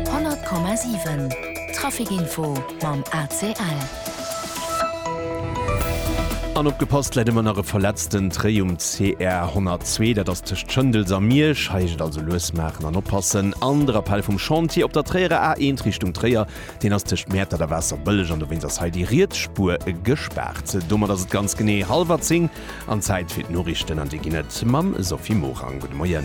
100,7 Trafic-info mam ACL. An opgepasst, läit ëmmer nach e verletzten Tréi um CR 102, dat ass tëscht Schëndels a Miersch. Hei heescht et also lues maachen an oppassen. An de Rappell vum Chantier op der Tréierer A1 Richtung Tréier, deen ass tëscht Mäertert a Waasserbëlleg an dowéinst ass hei déi riets Spuer gespaart. Domat ass et ganz genee hallwer 10. An Zäit fir d'Noriichten, an déi ginn et mam Sophie Morang. Gudde Moien.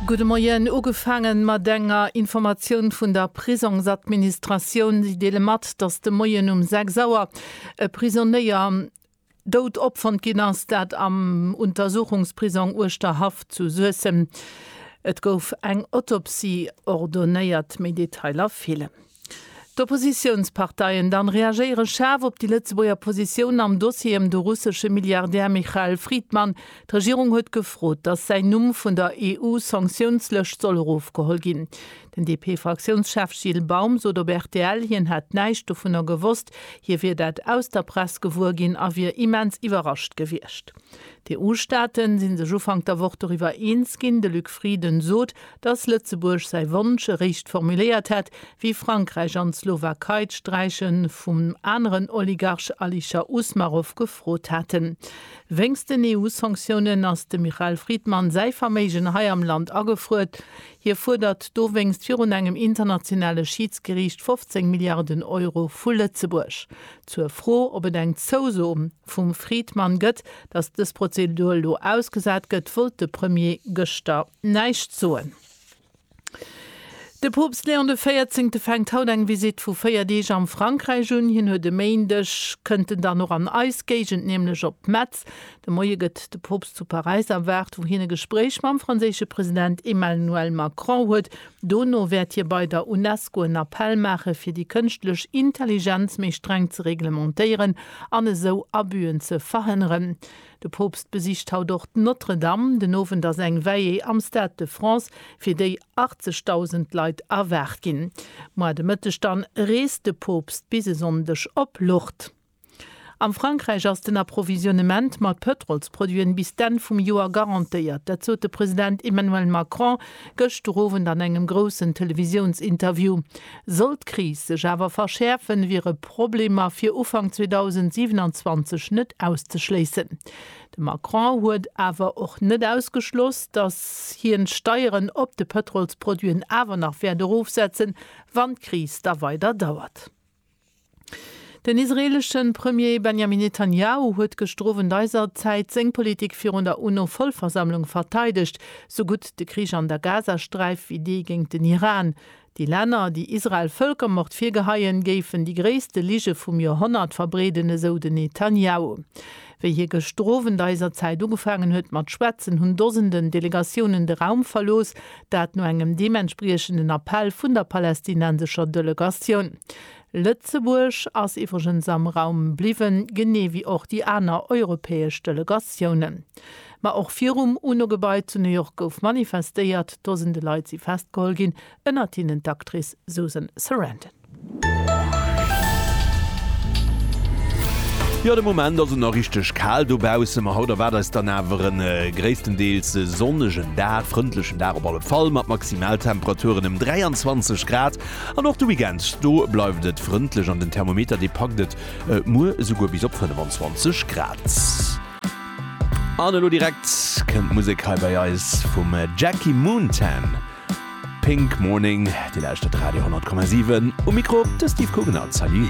Gudde Moien. Ugefaange mat enger Informatioun vun der Prisongsadministratioun. Si deele mat, datt de Moien um 6 Auer e Prisonéier dout opfonnt ginn ass, dat am Untersuchungsprisong Uerschterhaff zu Suessem. Et gouf eng Autopsie ordonéiert. Méi Detailer feelen. D'Oppositiounsparteien dann reagéiere schaarf op déi Lëtzebuerger Positioun am Dossier ëm de russesche Milliardär Michael Fridman. D'Regierung huet gefrot, datt säin Numm vun der EU-Sanktiounslëscht soll erofgeholl ginn. Den DP-Fraktiounschef Gilles Baum sot op rtl, hien hätt näischt dovunner gewosst. Hie wier dat aus der Press gewuer ginn a wier immens iwwerrascht gewiescht. D'EU-Staate si sech Ufank der Woch doriwwer eens ginn. De Luc Frieden sot, datt Lëtzebuerg säi Wonsch eréischt formuléiert hätt, wéi Frankräich an d'Slowakei d'Sträiche vum aneren Oligarch Alisher Usmarov gefrot haten. Wéinst den EU-Sanktiounen ass dem Michael Friedman säi Verméigen hei am Land agefruer. Hie fuerdert dowéinst virun engem internationale Schiidsgeriicht 15 Milliarden Euro vu Lëtzebuerg. Zur Fro, ob et eng Zouso vum Friedman gëtt, datt dës Prozedur elo ausgesat gëtt, wollt de Premier gëschter Näischt soen. De Poopst Léon de Véierzéngte fänkt haut eng Visitt vu 4 Deeg am Frankräich un. Hien huet e Méindeg, kënnt en dann och an eis Géigend, nämlech op Metz. De Moie gëtt de Poopst zu Paräis erwaart, wou hien e Gespréich mam franséische President Emmanuel Macron huet. Dono wäert hie bei der Unesco en Appell maache fir déi kënschtlech Intelligenz méi streng ze reglementéieren an esou Abüen ze verhënneren. De Poopst besicht haut och d'Notre-Dame. Den Owend ass eng Veillée am Stade de France, fir déi 80.000 Leit erwaart ginn. Moar de Mëtteg dann reest de Poopst bis e Sonndeg op Lourdes. Am Frankräich ass den Approvisionnement mat Pëtrolsproduiten bis d'Enn vum Joer garantéiert. Dat sot de President Emmanuel Macron. Gëschter Owend an engem groussen Televisiounsinterview. Sollt d'Kris sech awer verschäerfen, wiere Problemer fir Ufank 2027 net auszeschléissen. De Macron huet awer och net ausgeschloss, datt hien d'Steieren op de Pëtrolsproduiten awer nach wäert erofsetzen, wann d'Kris da weider dauert. Den israeelesche Premier Benjamin Netanjahu huet gëschter Owend eiser Zäit seng Politik virun der UNO-Vollversammlung verteidegt, sou gutt de Krich an der Gazasträif wéi dee géint den Iran. Déi Länner, déi Israel Vëlkermord virgeheien, géifen déi gréisste Lige vum Joerhonnert verbreeden, esou den Netanjahu. Wéi hie gëschter Owend eiser Zäit ugefaangen huet mat schwätzen, hunn Dosenden Delegatiounen de Raum verlooss, dat no engem deementspriechenden Appell vun der palästinensescher Delegatioun. Lëtzebuerg ass iwwregens am Raum bliwwen, genee wéi och déi aner europäesch Delegatiounen. Ma och virum UNO-Gebai zu New York gouf manifestéiert. Dosende Leit si festgeholl ginn, ënnert hinnen d'Actrice Susan Sarandon. Jo, de Moment ass et nach richteg kal dobaussen, ma haut erwaart eis dann awer e gréisstendeels sonnegen Dag, frëndlechen Dag op alle Fall, mat Maximaltemperaturen ëm 23 Grad. An och de Weekend, do bleift et frëndlech an den Thermometer, dee packt et muer esouguer bis op 25 Grad. An elo direkt kënnt d'Musek hei bei eis vum Jackie Moontan. Pink Morning, Dir lauschtert Radio 10,7, um Mikro de Steve Kugener. Salut!